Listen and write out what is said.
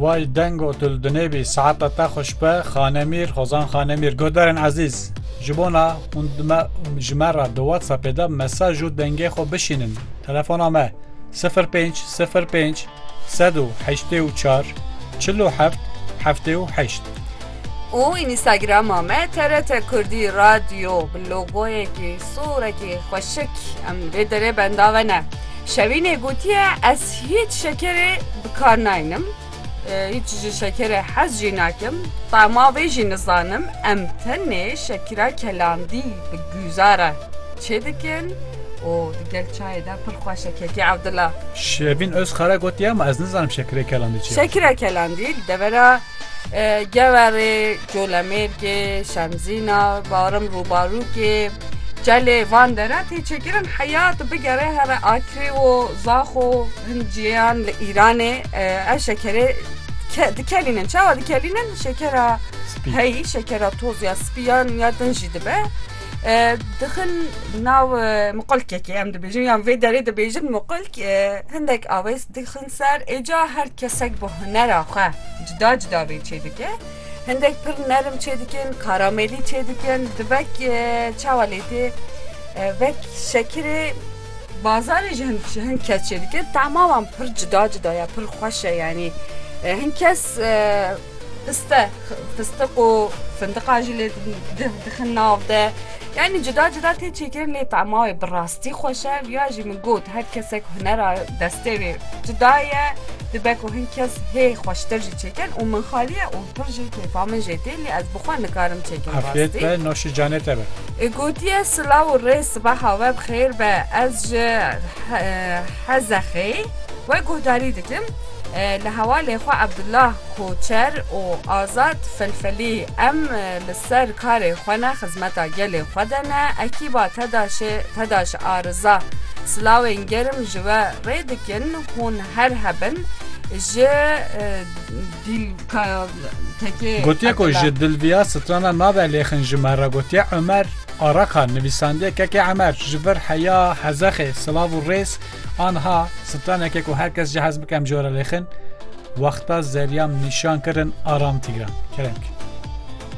Way deng û tu li Dunêbî saeta te xweş be Xanemîr Hozan Xanemîr Guhdarên ezîz ji bona hûn ji me re di WhatsAppê de mesaj û dengê xwe bişînin telefona me 05 05 184 47 78 û înîstagrama me TRT Kurdî Radyo bi logoyekî sorekî xweşik em vê derê bendave ne. Şevînê gotiye ez hîç şekerê bi kar naynim, hîç ji şekerê hez jî nakim, tema vê jî nizanim em tenê şekira kelandî bi guzare çê dikin û di gel çayê de pir xweş e Kekê Evdila. Şevîn Ozkara gotiye ma ez nizanim şekirê kelandî çi ye. Şekira kelandî li devera. Geverê, Colemêrgê, Şemzîna, Barim Rûbarûkê, Çelê van dere tê çêkirin heyat bigere here Akrê û Zaxo hin ciyên li Îranê ev şekerê dikelînin. Çawa dikelînin? Şekera heyî, şekera toz ya spî yan ya din jî dibe. Dixin nav muqulkekê em dibêjin yan vê derê dibêjin muqulk hindek awês dixin ser êca her kesek bi hunera xwe cida cida vê çê dike. Hindek pir nerim çê dikin, karamelî çê dikin, divek çawa lê tê vek şekirê bazarê ji hin ji hin kes çê dikin. Tama wan pir cida cida ye, pir xweş e yanî hin kes Piste, fistiq û findiqa jî lê dixin nav de. Yanî cuda cuda tê çêkirin lê tema wê bi rastî xweş e. Viya jî min got her kesek hunera destê wê cuda ye. Dibe ku hin kes hê xweştir jî çêkin û min xalî ye û pir jî kêfa min jê tê lê ez bi xwe nikarim çêkim rastî. Afiyet be, noşê canê te be. Gotiye silav û rê sibeha we bi xêr be ez ji Hezexê we guhdarî dikim. Li hevalê xwe Abdullah Koçer û Azad Felfelî, Em li ser karê xwe ne, xizmeta gelê xwe de ne, ekîba TEDAŞ'ê, TEDAŞ a Riza, silawên germ ji we rê dikin, hûn her hebin ji dîlktekê Gotiye ku ji dilviya strana nabe lêxin ji me re gotiye Omer Araka, nivîsandiye kekê Emer, ji vir heya Hezexê, silav û rêz, Anha straneke ku her kes jihez bike em jora lêxin, wexta zeryan nîşan kirin aram tîran. Kerem.